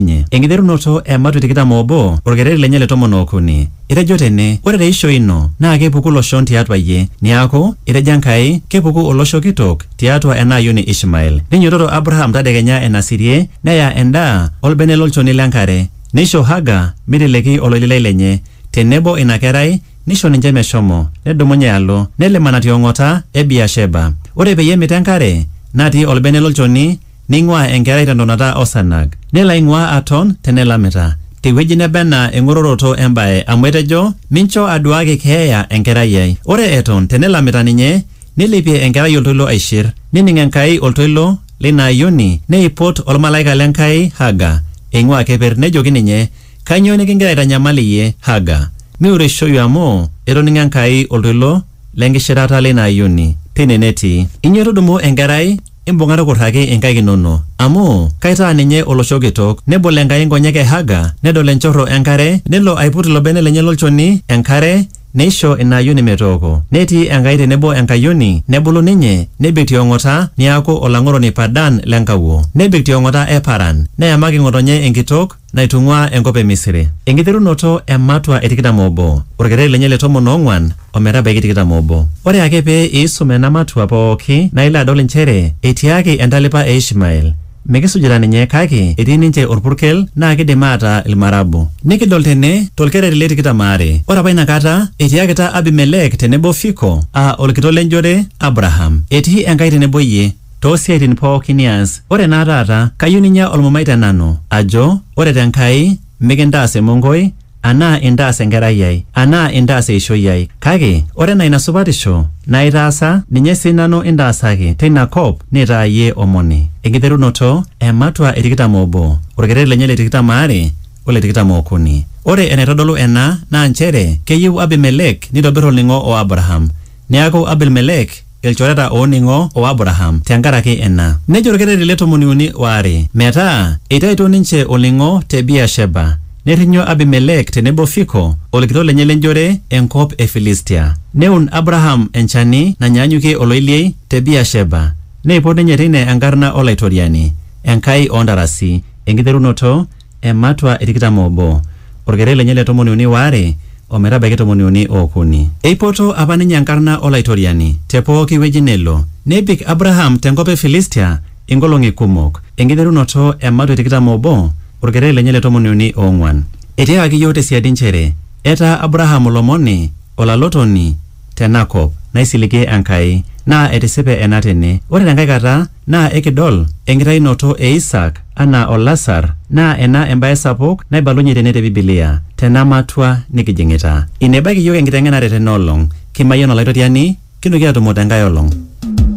ninye. Enkiterunoto e Matwi tikitam oobo, olkereri lenye le tomon ookuni. Etejo tene, Ore te ishoi ino naa kepuku iloshon tiatua iyie. Neaku, etejo Enkai, kepuku olosho kitok tiatua ena ayioni Ishmael. Neinyototo Abraham tadekenya enasirie, neya endaa o lbene lo lchoni le nkare, neisho Haga meiteleki oloililai lenye, te nebo ina kerai, neisho ninche meshomo, nedumunye alo, nelimana ti ong'ota e Beer-sheba. Ore peyie emit enkare natii olbene lo lchoni, neing'uaa enkerai te ntonata o sarnag, nelo aing'uaa aton te nelamita, te wueji neba anaa eng'ororoto e mbae, amu etejo, Mincho aduaaki keeya enkerai ai. Ore eton te nelamita ninye, neilepie enkerai oltoilo aishir, nening Enkai oltoilo le ina ayioni, neipot olmalaika le Nkai Haga eing'uaa keper, nejoki ninye, Kainyoo nikingira aitanyamal iyie, Haga? Miureishoyu amu etoning'o Enkai oltoilo le nkishirata le ina ayioni teine netii. Inyo tudumu enkerai, imbung'a tukurraki inkaik inono, amu kaitaa ninye olosho kitok. Nebol Enkai nkonyek e Haga, nedol enchorro e nkare, nelo aiput ilo bene lenye lo lchoni enkare, neisho ina ayioni metooko. Netii Enkai tenebo enkayioni, nebulu ninye, nebik ti ong'ota, neaku olang'oroni Padan le nkawuo. Nebik ti ong'ota e Paran. Neyamaki ng'otonye enkitok. naitung'uaa enkop e Misiri. Enkiterunoto e matua e tikitam oobo, olkereri lenye le tomon oong'uan o metabaiki tikitam oobo. Ore ake pee iisum ena matua pooki naa ilo adol inchere etiaaki entalipa e Ishmael mikisujita ninye kake etii ninche olpurkel naa keidim aataa Ilmarabu. Nikidol tene to lkereri le tikitam aare. Ore apa ina kata etiakita Abimeleek tenebo Fiko aa olkitok le njore Abraham, Etii Enkai tenebo iyie. too siaitin pooki nias. Ore naa taata, kayieu ninya olmumai te nanu, ajo, Ore te Nkai, mikintaas emonkoi, anaa intaas enkerai ai, anaa intaas eishoi ai, kake ore enaa ina supatisho naitaasa, ninye sii nanu intaasaki, te ina kop nitaa iyie omoni. Enkiterunoto e matua e tikitam o obo, olkereri lenye le tikitam aare o le tikitam o okuni. Ore enaitodolu ena naa nchere keyieu Abimelek neitobir olning'o o Abraham. Neaku, Abilmelek. ilchoreta ooning'o o Abraham te nkaraki ina. Nejo olkereri le tomoni uni o are, Metaa eitaito ninche olning'o te Beer-sheba, nerrinyo Abimelek tenebo Fiko olkitok lenye le njore enkop e Filistia. Neun Abraham enchani nanyaanyukie oloiliei te Beer-sheba, neipot ninye teine enkarna o Laitoriani, Enkai oo ntarasi, enkiterunoto ematua e tikitam obo, olkeret lenye le tomoni uni waare o metabaiki tomoni uni okuni. Eipoto apa ninye enkarna o Laitoriani te pooki wueji nelo. Nebik Abraham te nkop e Filistia inkolong'i kumok, enkiterunoto ematua e tikitam obo, olkeret lenye le tomoni uni oong'uan. Etiakaki iyiook te siadi nchere etaa Abraham olomoni, olalotoni, tena kop, naisiligie Enkai, naa etisipe ena tene. Ore tenkae kata naa ekidol enkitayunoto e Isaak anaa olasar, naa ena embae sapuk naibalunye tene te Bibilia, tena matua nikijing'ita. Ina ebaiki iyiook enkiteng'enare tena olong, kimayian Olaitoriani, kinoki aatumo te nkae olong.